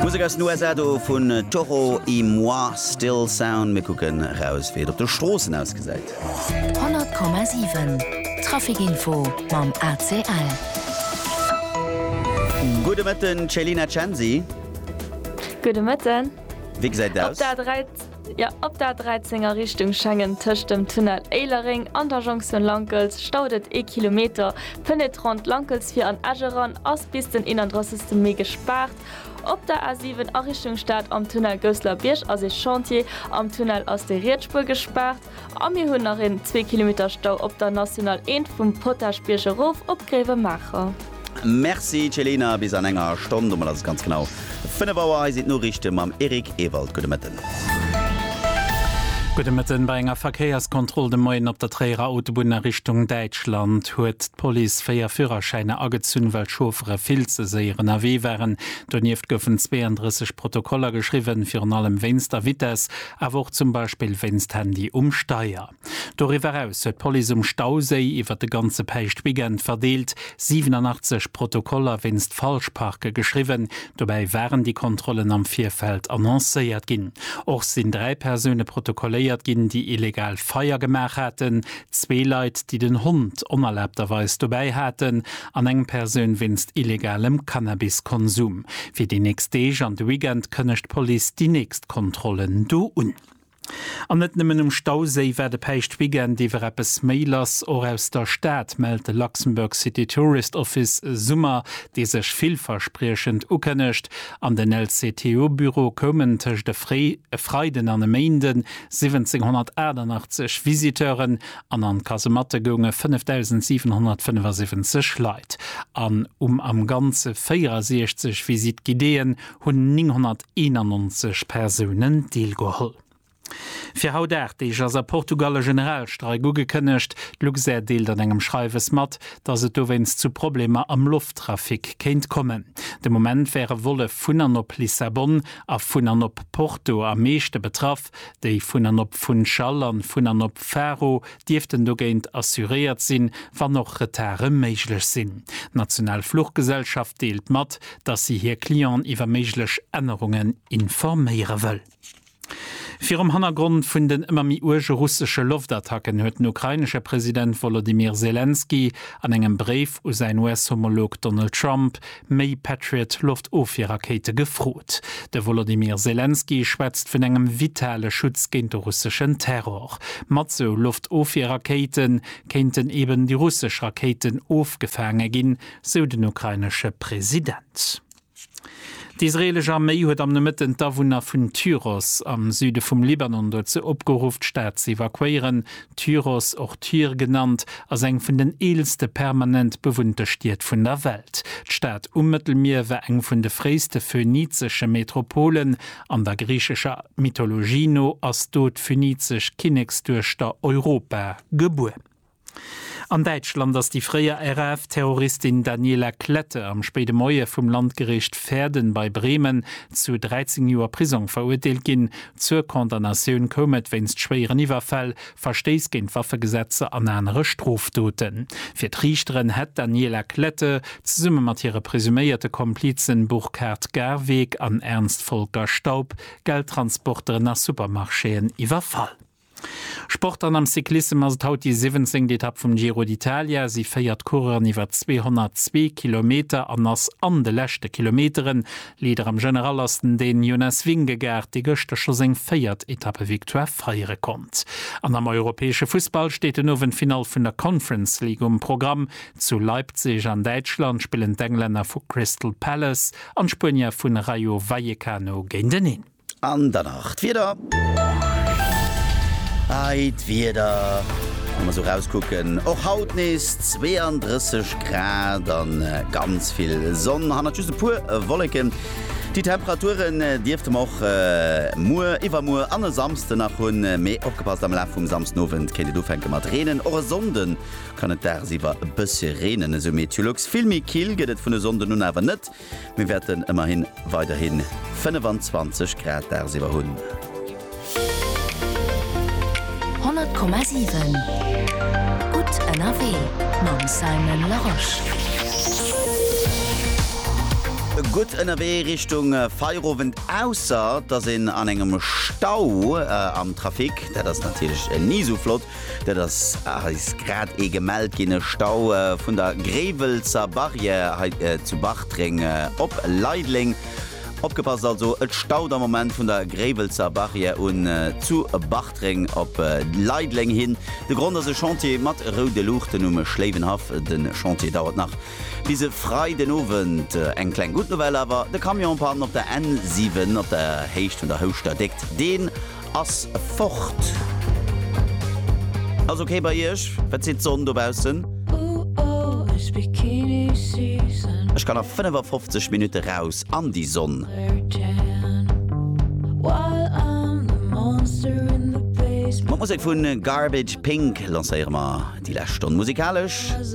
Musek aus den USA do vun Toro y Moi, Still Sound. Mir kucken eraus wéi et op de Stroossen ausgesäit. 100,7 Trafikinfo mam ACL. Gudde Mëtten Céline Acensi. Gudde Mëtten. Wéi gesäit et aus? Jo, op der 13 a Richtung Schengen tëscht dem Tunnel Éilereng an der Jonktioun Lankels staut et ee Kilometer. Fënnt ee d'Rond Lankels fir an Esch eran, ass bis den 31 Mee gespaart. Op der A7 a Richtung Stad am Tunnel Gousseler Bierg ass ee Chantier. Am Tunnel ass déi riets Spuer gespaart. A mir hunn nach een zwee Kilometer Stau op der National 1 vum Potaschbierg erof op Gréiwemaacher. Merci Celina, bis an enger Stonn, domat ass et ganz genau 5 Auer. Hei sinn d'Noriichte mam Eric Ewald. Gudde Mëtten. Gudde Mëtten. Bei enger Verkéierskontroll de Moien op der Tréierer Autobunn a Richtung Däitschland huet d'Police véier Fürerschäiner agezunn, well d'Chauffere vill ze séier ënnerwee waren. Donieft goufen 32 Protokoller geschriwwen, virun allem wéinst der Vitess. awer och zum Beispill wéinst Handy um Steier. Doriwwer eraus huet d'Police um Stauséi iwwert de ganze Päischtweekend verdeelt 87 Protokoller wéinst Falschparke geschriwwen. Dobäi waren déi Kontrollen am Virfeld annoncéiert ginn. Och sinn dräi Persoune protokolléiert ginn, déi illegal Feier gemaach haten. Zwee Leit, déi den Hond onerlaabterweis dobäi haten an eng Persoun wéinst illegalem Cannabiskonsum. Fir déi nächst Deeg an de Weekend kënnegt d'Police déi nächst Kontrollen do un. An net nëmmen um Stauséi war de Päischtweekend iwwer eppes méi lass. Och aus der Stad mellt de Luxembourg City Tourist Office e Summer, dee sech villverspriechend ukënnegt. An den LCTO-Büro koumen tëscht e Freiden an e Méinden 1788 Visiteuren an an d'Kasematte gounge 5.775 Leit an um am Ganze 64 Visite guidéeën hunn 991 Persounen deelgeholl. Fir haut 8 Deeg ass a Portugal e Generalstreik ugekënnegt. D'Luxair deelt an engem Schreiwes mat, datt et dowéinst zu Problemer am Lofttrafic kéint kommen. De Moment wäre Volle vun an op Lissabon a vun an op Porto am meeschte betraff, déi vun an op Funchal an vun an op Faro dierften dogéint assuréiert sinn, wann och Retarde méiglech sinn. D'national Fluchgesellschaft deelt mat, datt si hir Clienten iwwer méiglech Ännerungen informéiere wëll. Virum Hannergrond vun den ëmmer méi uerge russesche Loftattacken huet den ukrainesche President Wolodymyr Selenskyj an engem Bréif u säin US-Homolog Donald Trump méi Patriot Loftofwierrakéite gefrot. De Wolodymyr Selenskyj schwätzt vun engem vitale Schutz géint de russeschen Terror. Mat sou Loftofwierrakéite kéinten eben déi russesch Rakéiten ofgefaange ginn, sou den ukrainesche President. D'israeelesch Arméi huet am Nomëtten d'Awunner vun Tyros am Süde vum Libanon dozou opgeruff, d'Stad ze evakuéieren, Tyros, och Tyr genannt, ass eng vun den eelste permanent bewunnte Stied vun der Welt. D'Stad um Mëttelmier war eng vun de fréiste phönizesche Metropolen. An der griichescher Mythologie no ass do d'phynizesch Kinneksduechter Europa gebuer. An Däitschland ass déi fréier RAF-Terroristin Daniela Klette am spéide Moie vum Landgericht Verden bei Bremen zu 13 Joer Prisong verurteelt ginn, Zur Condamnatioun koum et wéinst schwéieren Iwwerfäll, Verstéiss géint d'Waffegesetzer an anere Strofdoten. Fir d'Riichteren hätt d'Daniela Klette zesumme mat hire presuméierte Komplizen Burkhard Garweg an Ernst Volker Staub Geldtransporteren a Supermarchéen iwwerfall. Sport an am Cyclissem ass et haut déi siwwenzéngt Etapp vum Giro d'Italia. Si féiert d'Coureuren iwwer 202 Kilometer an ass an de leschte Kilometeren. Leader am General ass den Dän Jonas Vingegaard, dee gëschter scho seng véiert Etappe-Victoire feiere konnt. An am europäesche Fussball steet den Owend d'Finall vun der Conference League um Programm. Zu Leipzig an Däitschland spillen d'Englänner vu Crystal Palace an d'Spuenier vun Rayo Vallecano géinteneen. An dann nach d'Wieder. Hei d'Wieder, wa mer sou rauskucken, och haut nees 32 Grad a ganz vill Sonn, hannert just e puer Wolleken. Déi Temperaturen dierfte mer och muer, iwwermuer an e Samsde nach hunn, mee opgepasst, am Laf vum Samsdenowend kéint et ufänke mat reenen. Och e Sonnde kann et dagsiwwer e bëssche reenen, esou Meteolux. Vill méi kill gëtt et vun e Sonnden un awer net. Mir wäerten ëmmerhin weiderhi 25 Grad dagsiwwer hunn. 100,7 Gutt ënnerwee mam Simon Larosche. Gutt ënnerwee Richtung Feierowend, ausser dass een an engem Stau am Trafic, dat ass natierlech ni esou flott, Dat ass eis grad ee gemellt ginn, e Stau vun der Gréiwelsser Barrière hei zu Bartreng op Leideleng. Opgepasst also, et staut am Moment vun der Gréiwelsser Barrière un zu Bartreng op Leideleng hin. De Grond ass e Chantier mat roude Luuchten um Schléiwenhaff. De Chantier dauert nach bis e Freiden Owend. Eng kleng gutt Nouvelle awer, de Camion en panne op der N7 op der Héicht vun der Houschter déckt deen. Ass fort. Ass ok bei iech? Wat seet d'Sonn dobaussen? Ech kann a 55 Minutte raus an déi Sonn. Mat Musek vu Garbage Pink lancéiere mer déi lescht Stonn musikalesch.